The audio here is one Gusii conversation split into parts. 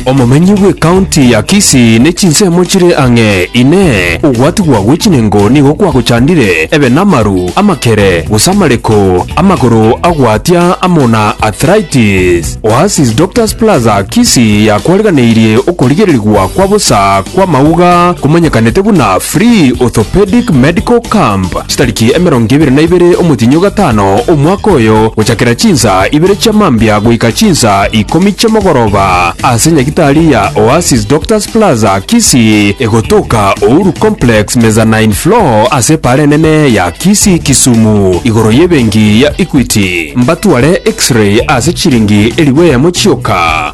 Omomenyi bw'ekaunti ya Kisii ne chinsemo chire ang'e. Inee! Ogwatigwa gwe chinengo nigo kwagochandire? Ebe namaru, amakere, gose amareko, amagoro agwatia amo na arthritis? Oasis Doctors Plaza Kisii yakwariganeirie okorigererigwa kwa bosa kw'amauga komanyekanete buna Free Orthopedic Medical Camp. Chitariki emerongo ebere na ibere omotienyi o gatano, omwaka oyo, gochakera chinsa ibere chia mambia goika chinsa ikomi chi'omogoroba, ase nyagitari ya Oasis Doctors Plaza, Kisii, egotoka Uhuru Complex, mezzanine floor, ase epaara enene ya Kisii, Kisumu, igoro y'ebenki ya Equity. Mbatware X-ray ase chiringi elifu eyemo chioka.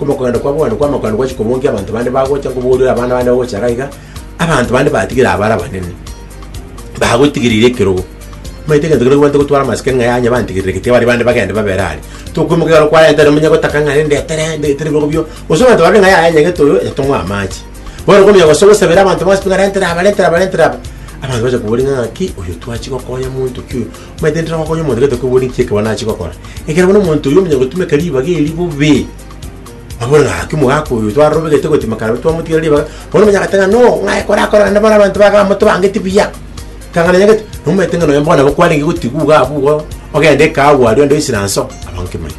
Omogondo kwa bono kw'amakondo gwachia kobongia abanto bande bagocha nkoboria abana bande bagocha iga iga, abanto bande batigire abare abanene, bagotigereire ekerogo. Omanyete egento keria kobwate gotwara amasike ng'a yanya bantigerere gete bare bande bagende babere are. Tokoimoka igoro kwarenta ere omonye gotaka ng'a rende etere nde etere ebirogo bio. Gose abanto barore ng'a yaya nyagete oyo yatong'wa amache. Bono komenya gose gosabera abanto base pi ng'a rentere aba rentere aba rentere aba, abanto bache koboria ng'a ng'aki oyo twachia gokonya monto ki oyo. Maete intera ngokonye omonto gete koigwa ninki ekero nachie gokora. Ekero bono omonto oyio omonyene gotumeka ribaga eri bobe, abore gaki omogaka oyo twarorobe gete gotima kare twamotigera ribaga, bono omanya gete ng'a no, ng'aye kore akore naende bono abanto baka bamotobangeti buya. Kang'ana nyagete, nomanyete ng'a nonya bono nabo kwarenge gotigwa iga abwo igo ogende kaa abwo aria onde oisire anso, abange manya.